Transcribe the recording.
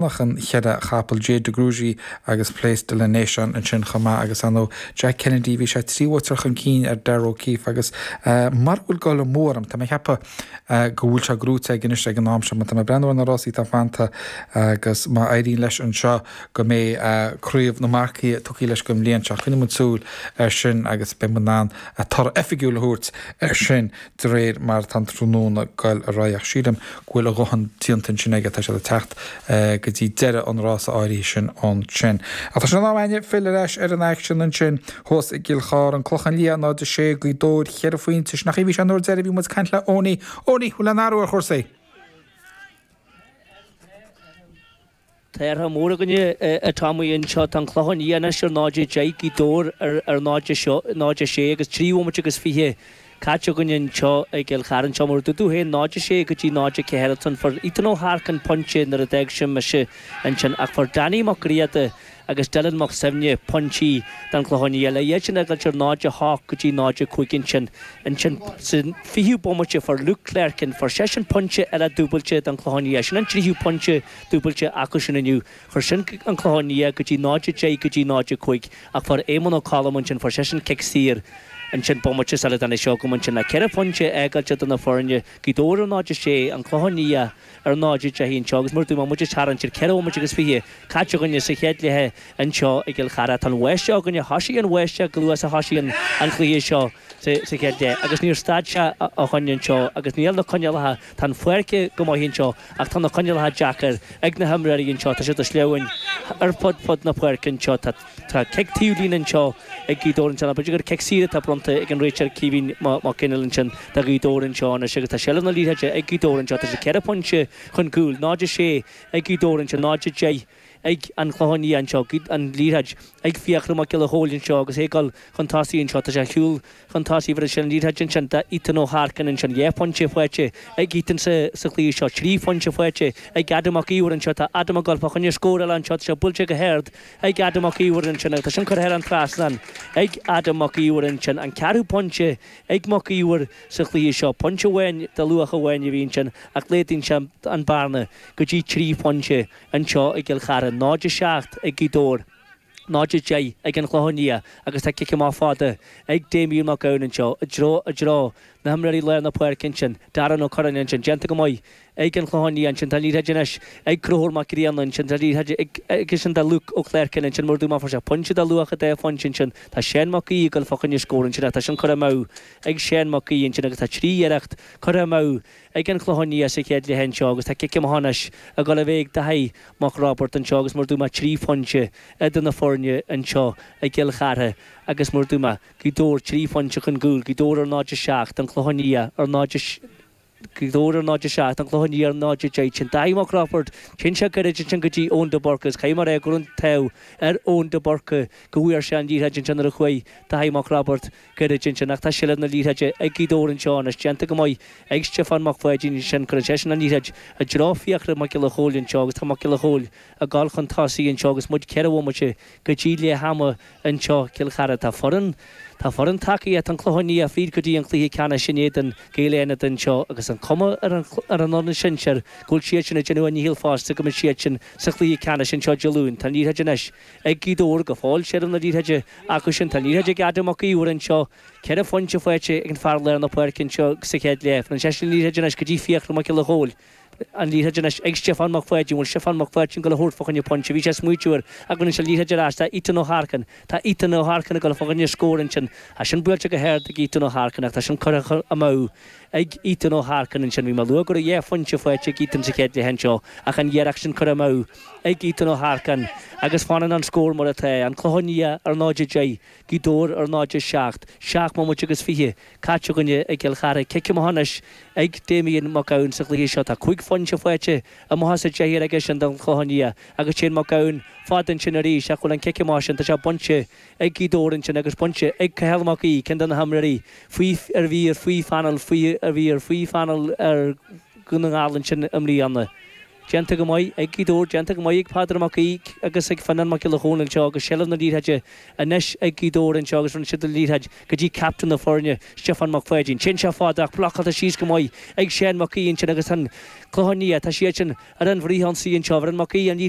Chonac an chéad dá chapall Jade de Grugy agus Place de la Nation ansin chomh maith agus ar ndóigh Jack Kennedy bhí sé trí bhuaiteoir chun cinn ar Darragh O'Keeffe agus mura bhfuil dul amú orm, tá mé ag ceapadh go bhfuil sé gnóite aige anois ag an am seo mar tá mé ag breathnú ar na rásaí atá fanta agus má éiríonn leis anseo go mbeidh craobh na marcaí tugtha leis don bhliain seo. Coinneoidh muid súil air sin agus beidh muid in ann toradh oifigiúil a thabhairt air sin. de réir mar atá an tráthnóna ag goil ar aghaidh, ach sílim go bhfuil a dhóthain déanta ansin aige, tá siad ag teacht go dtí deireadh an rása áirithe sin ansin. Ach tá sé in am againn filleadh ar ais ar an aicsean ansin thuas i gCill Chartha, an Clochán Liath 0-6, Gaoth Dobhair cheithre phointe, sin an chaoi a bhí sé an uair deiridh a bhí muid ag caint le Eoiní. Eoiní, an bhfuil aon athrú ar chúrsaí? Tá athrú mór againne, a Tommy, anseo. Tá an Clochán Liath anois ar 0 10 Gaoth Dobhair ar 0 0 6 agus trí bhomaite agus fiche caite againn anseo i gCill Chartha anseo, mar a dúirt tú féin, 0 6 go dtí 0 4 ansin fuair Ethan Ó hEarcáin, pointe, nuair a d'fhág sibh mise ansin ach fuair Danny Mac Grianna, agus Dylan Mac Suibhne, Pointí don Chlochán Liath le hiad sin a fhágáilt ar 0-8 go dtí 0-5 ansin. Ansin, sa 20ú bomaite, fuair Luke Clerkin, fuair seisean pointe eile dúbailte don Chlochán Liath sin an tríú pointe dúbailte acu sin inniu. Chuir sin an Clochán Liath go dtí 0-10 go dtí 0-5 ach fuair Éamonn Ó Colm ansin, fuair seisean cic saor ansin bomaite sula dtáinig sibh chugam ansin le ceithre phointe a fhágáilt eadar na foirne Gaoth Dobhair ar 0-6 an Clochán Liath ar 0:10 anseo agus mar a dúirt mé muid ag tarraingt ar 4 bhomaite agus 20 caite againne sa chéad leath anseo i gCill Chartha. Tá an bháisteach againne, thoisigh an bháisteach chomh luath is a thoisigh an chluiche seo sa chéad leath agus níor stad sé ó shoin anseo agus níl na coinníollacha, tá an pháirc go maith anseo ach tá na coinníollacha deacair ag na himreoirí anseo, tá siad go sleamhain ar fud fad na páirce anseo, tá. Tá cic taobh líne anseo ag Gaoth Dobhair anseo nó b'fhéidir gur cic saor atá bronnta ag an réiteoir Caoimhín Mac Fhionnaile ansin do Ghaoth Dobhair anseo anois agus tá seilbh na liathróide ag Gaoth Dobhair anseo. Tá siad ceithre phointe chun cúil, 0-6 ag Gaoth Dobhair anseo, 0-10 ag an Chlochán Liath anseo. An liathróid ag Fiachra Mac Giolla Chóill anseo agus é ag dul chun tosaigh anseo, tá sé ag siúl, chun tosaigh bheir sé an liathróid ansin do Ethan Ó hEarcáin ansin dhá phointe faighte ag Ethan sa sa chluiche seo, trí phointe faighte ag Adam Mac Íomhair anseo, tá Adam ag goil fá choinne scór eile anseo, tá sé buailte go hard ag Adam Mac Íomhair ansin agus tá sin curtha thar an trasnán ag Adam Mac Íomhair ansin, an ceathrú pointe ag Mac Íomhair sa chluiche seo, pointe amháin de luach amháin a bhí ansin ach laghdaíonn sé an bearna go dtí trí phointe anseo i gCill Chartha, 0-7 ag Gaoth Dobhair. 0-10 ag an Chlochán Liath agus tá cic amach fada ag Damien Mac Gabhann anseo i dtreo, i dtreo, na himreoirí lár na páirce ansin, Darren Ó Curráin ansin, déanta go maith ag an Chlochán Liath ansin, tá an liathróid anois ag Conchúr Mac Grianna ansin, tá an liathróid ag, anonn do Luke Ó Cléircín ansin, mar a dúirt mé, fuair sé pointe de luach dhá phointe ansin, tá Seán Mac Aoidh ag goil fá choinne scór ansin ach tá sin curtha amú ag Seán Mac Aoidh ansin agus tá trí iarracht curtha amú ag an Chlochán Liath sa chéad leath anseo agus tá cic amach anois ag dul a bheith ag Daithí Mac Roibeard anseo agus mar a dúirt mé trí phoinnte idir na foirne anseo i gCill Chartha agus mar a dúirt mé Gaoth Dobhair trí phoinnte chun cúil, Gaoth Dobhair ar 0-7 An Clochán Liath ar 0 Gaoth Dobhair ar 0-7 An Clochán Liath ar 0-10 sin Daithí Mac Roibeard, téann sé gairid ansin go dtí Eoin de Búrca is caithfidh mé a rá go raibh an t-ádh ar Eoin de Búrca go bhfuair sé an liathróid ansin nuair a chuaigh Daithí Mac Roibeard Gairid ansin, ach tá seilbh na liathróide ag Gaoth Dobhair anseo anois, déanta go maith ag Stiofán Mac Pháidín ansin, cuireann seisean an liathróid i dtreo Fiachra Mac Giolla Chóill anseo agus tá Mac Giolla Chóill ag dul chun tosaigh anseo agus muid ceithre bhomaite go dtí leath ama anseo. Cill Chartha Tá foireann, tá foireann tacaíochta An Clochán Liath fríd go dtí an cluiche ceannais in éadan Gaeil Fhánada anseo agus an cuma ar an, ar an fhoireann sinsir go bhfuil siadsan ag déanamh a ndícheall fosta go mbeidh siadsan sa chluiche ceannais anseo Dé Luain. Tá an liathróid anois. ag Gaoth Dobhair go fóill seilbh na liathróide acusan. Tá an liathróid ag Adam Mac Íomhair anseo, ceithre phointe faighte ag an fear lár na páirce anseo sa chéad leath. Faigheann seisean an liathróid anois go dtí Fiachra Mac Giolla Chóill. An liathróid anois ag Stiofán Mac Pháidín. An bhfuil Stiofán Mac Pháidín goil a thabhairt fá choinne pointe? Bhí sé smaoitiú air ach baineann sé an liathróid ar ais. Tá Ethan Ó hEarcáin. Tá Ethan Ó hEarcáin ag goil fá choinne scór ansin. Tá sin buailte go hard ag Ethan Ó hEarcáin ach tá sin curtha amú. ag Ethan Ó hEarcáin ansin. Bhí mé ag lua go raibh dhá phointe faighte ag Ethan sa chéad leath anseo ach an iarracht sin curtha amú ag Ethan Ó hEarcáin agus fanann an scór mar atá, An Clochán Liath ar 0-10, Gaoth Dobhair ar 0-7. Seacht mbomaite agus fiche caite againne i gCill Chartha. Cic amach anois ag Damien Mac Gabhann sa chluiche seo. Tá cúig phointe faighte amach as a deichniúr aigesean don Chlochán Liath agus téann Mac Gabhann fad ansin arís ach bhuel an cic amach sin, tá sé bainte ag Gaoth Dobhair ansin agus bainte ag Cathal Mac Aoidh, ceann de na himreoirí faoi a bhí ar faoi phainéal a bhí ar faoi phainéal ar Dhún na nGall ansin i mbliana. Déanta go maith ag Gaoth Dobhair, déanta go maith ag Peadar Mac Aoidh agus ag Fionnán Mac Giolla Chóill anseo agus seilbh na liathróide anois ag Gaoth Dobhair anseo agus rinne siad an liathróid go dtí captain na foirne, Stiofán Mac Pháidín. Téann sé fada ach blocáiltear síos go maith ag Seán Mac Aoidh ansin agus An Clochán Liath. Tá siadsan ar an bhfríth-ionsaí anseo. Bhronn Mac Aoidh an liathróid.